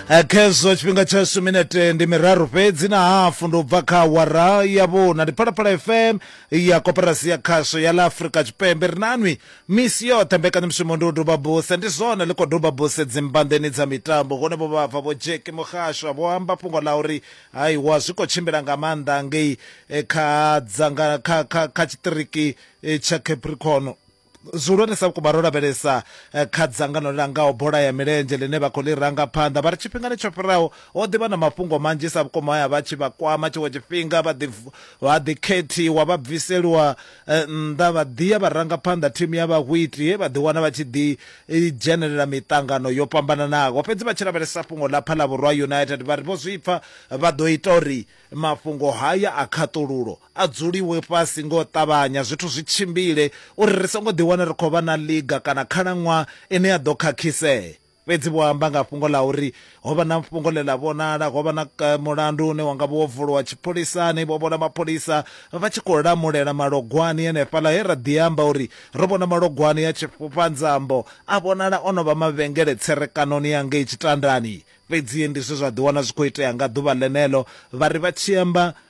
Eh, khezwo tshifhinga tsha suminete ndi miraru fhedzi na hafu ndo bva kha wara ya vhuna ndi phalaphala fm ya koporasi ya khasho ya la afurika tshipembe ri nanwi misi yoṱhe mbekanyamushumo ndi u doba buse ndi zwone ḽi khou doba buse dzimbanḓeni dza mitambo hune vho vhabva vho jeki muhasho vho amba fhungo ḽa uri haiwa zwi khou tshimbila nga maanḓa ngei eh, kha dzanga kha kha kha tshiṱiriki eh, tsha capricorn Zwihulwanesa vhukuma ro lavhelesa eh, kha dzangano ḽi langaho bola ya milenzhe ḽine vha khou ḽi ranga phanḓa vha ri tshifhingani tsho fhiraho ho ḓivha na mafhungo manzhisa vhukuma ya vha tshi vha kwama tshiṅwe tshifhinga vha ḓi vha ḓi khethiwa vha bviseliwa eh, nnḓa vha ḓiya vha ranga phanḓa thimu ya vhahwiti he vha ḓi wana vha tshi ḓi eh, dzhenelela miṱangano yo fhambananaho fhedzi vha tshi lavhelesa fhungo ḽa phalavhurwa united vha ri vho zwipfa vha ḓo ita uri mafhungo haya a khaṱululo a dzuliwe fhasi nga u ṱavhanya zwithu zwi tshimbile uri ri songo ḓiwana ri khou vha na ḽiga kana khalaṅwaha ine ya ḓo khakhisea fhedzi vho amba nga fhungo ḽa uri ho vha na fhungo ḽe ḽa vhonala ho vha na eh, mulandu une wanga vho vuliwa tshipholisani vho vhona mapholisa vha tshi khou lamulela malogwani henefhaḽa he ra ḓi amba uri ro vhona malogwani ya tshifhufhanzambo a vhonala o no vha mavhengele tserekanoni ya ngei tshitandani fhedzi ndi zwe zwa ḓiwana zwi khou itea nga ḓuvha ḽeneḽo vha ri vha tshi amba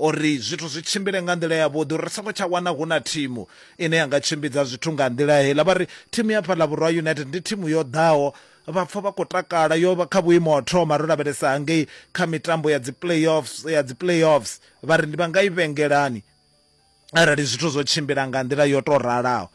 Uri zwithu zwi tshimbile nga nḓila yavhuḓi, uri ri songo tsha wana hu na thimu ine ya nga tshimbidza zwithu nga nḓila heiḽa. Vha ri, Thimu ya fhaḽa Vhurwa United ndi thimu yo ḓaho, vha pfa vha khou takala. Yo vha kha vhuimo ha u thoma ro lavhelesa hangei kha mitambo ya dzi playoffs, ya dzi playoffs. Vha ri, Ndi vha nga i vhengelani arali zwithu zwo tshimbila nga nḓila yo tou ralaho.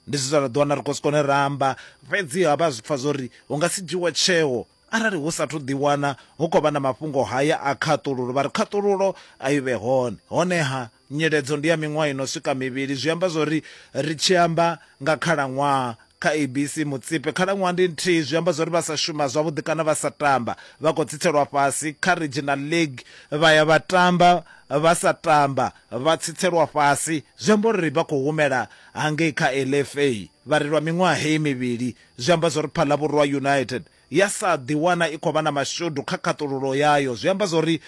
Ndi zwine ra ḓiwana ri khou si kone ra amba, fhedziha vha zwi pfa zwo ri hu nga si dzhiwe tsheo. Arali hu sathu ḓiwana hu khou vha na mafhungo haya a khaṱululo, vha ri khaṱululo a i vhe hone. Honeha, nyiledzo ndi ya miṅwaha i no swika mivhili. Zwi amba zwo ri ri tshi amba nga khalaṅwaha kha ABC Mutsipe, khalaṅwaha ndi nthihi. Zwi amba zwo ri vha sa shuma zwavhuḓi kana vha sa tamba vha khou tsitselwa fhasi. Kha Regional League vha ya vha tamba vha sa tamba vha tsitselwa fhasi. Zwi amba uri vha khou humela hangei kha LFA vha ri lwa miṅwaha heyi mivhili Zwi amba zwa uri Phalaborwa United ya sa ḓiwana i khou vha na mashudu kha khaṱululo yayo. Zwi amba zwa uri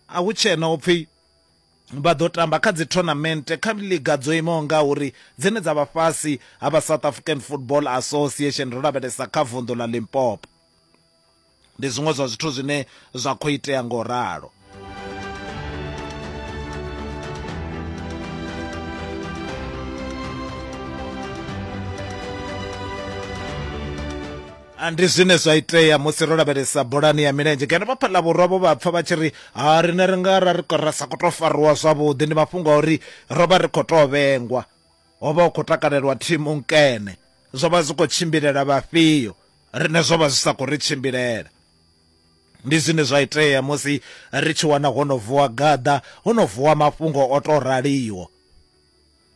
a hu tshena u pfi vha ḓo tamba kha dzithonamente kha liga dzo imaho ngauri dzine dza vha fhasi ha vha South African Football Association ro lavhelesa kha vunḓu ḽa Limpopo. Ndi zwiṅwe zwa zwithu zwine zwa khou itea ngo ralo. ndi zwine zwa itea musi ro lavhelesa bolani ya milenzhe ngeno vhapha ḽa vhurwa vho vha pfa vha tshi ri ha rine ri nga ra ri ra sa khou tou fariwa zwavhuḓi ndi mafhungo a uri ro vha ri khou tou vhengwa ho vha hu khou takalelwa thimu nkene zwo vha zwi khou tshimbilela vhafhio Riṋe zwo vha zwi sa khou ri tshimbilela. Ndi zwine zwa itea musi ri tshi wana ho no vuwa gaḓa, ho no vuwa mafhungo o tou raliho.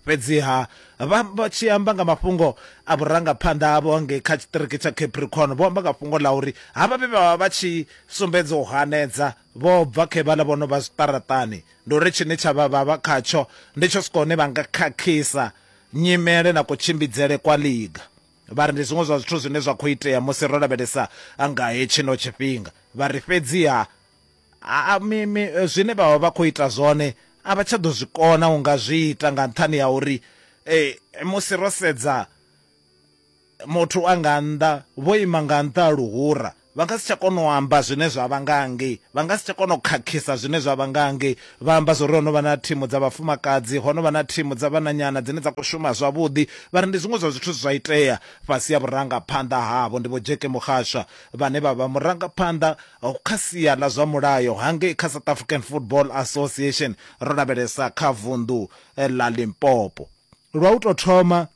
Fhedziha vha tshi amba nga mafhungo a vhurangaphanḓa havho ngei kha tshiṱiriki tsha Capricorn, vho amba nga fhungo ḽa uri havha vhe vha vha vha tshi sumbedza u hanedza vho bva khe vhaḽa vho no vha zwiṱaraṱani. Ndi uri tshine tsha vha vha vha khatsho ndi tsho swika hune vha nga khakhisa nyimele na kutshimbidzele kwa ḽiga. Vha ri ndi zwiṅwe zwa zwithu zwine zwa khou itea musi ro lavhelesa nga hetshino tshifhinga. Vha ri fhedziha a, mi, mi, zwine vha vha vha khou ita zwone a vha tsha ḓo zwi kona u nga zwi ita nga nṱhani ha uri e, musi ro sedza muthu a nga nnḓa vho ima nga nnḓa ha luhura Vha nga si tsha kona u amba zwine zwa vha nga hangei. Vha nga si tsha kona u khakhisa zwine zwa vha nga hangei. Vha amba zwa uri ho no vha na thimu dza vhafumakadzi, ho no vha na thimu dza vhananyana dzine dza khou shuma zwavhuḓi. Vha ri ndi zwiṅwe zwa zwithu zwe zwa itea fhasi ha vhurangaphanḓa havho. Ndi Vho Jackie Mokgashwa vhane vha vha murangaphanḓa kha sia ḽa zwa mulayo hangei kha South African Football Association, ro lavhelesa kha vunḓu ḽa Limpopo. Lwa u tou thoma,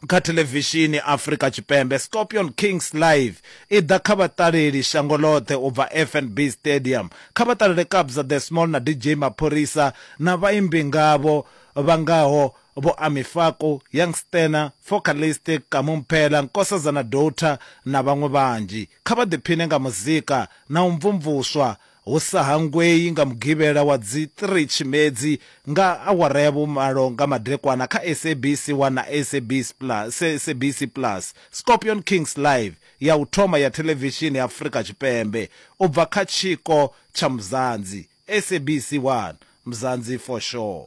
kha thelevishini Afrika Tshipembe, Scorpion Kings Live i ḓa kha vhaṱaleli shango ḽoṱhe u bva FNB Stadium. Kha vha ṱalele Kabza The Small na DJ Maphorisa na vhaimbi ngavho vha ngaho Vho Ami Faku, Young Stunna, Focalistic, Kamu Mphela, Nkosazana Doughta na vhaṅwe vhanzhi. Kha vha ḓiphine nga muzika na u mvumvuswa hu sa hangwei nga Mugivhela wa dzi 3 Tshimedzi nga awara ya vhumalo nga madekwana kha SABC 1 na SABC Plus, SABC Plus, Scorpion Kings Live, ya u thoma ya thelevishini ya Afrika Tshipembe u bva kha tshiko tsha Mzansi, SABC 1, Mzansi for Sure.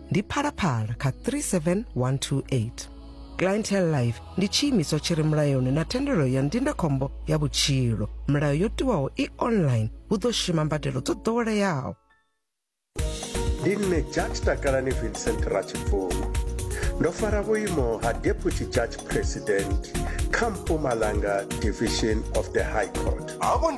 ndi phalaphala kha 37128 clientele life ndi tshiimiswa tshi re mulayoni na thendelo ya ndindakhombo ya vhutshilo milayo yo tiwaho i online hu ḓo shuma mbadelo dzo ḓoweleaho ndi nṋe judge takalani vincent ratshibvuma ndo fara vhuimo ha deputy judge president kha mpumalanga division of the high court havho ndi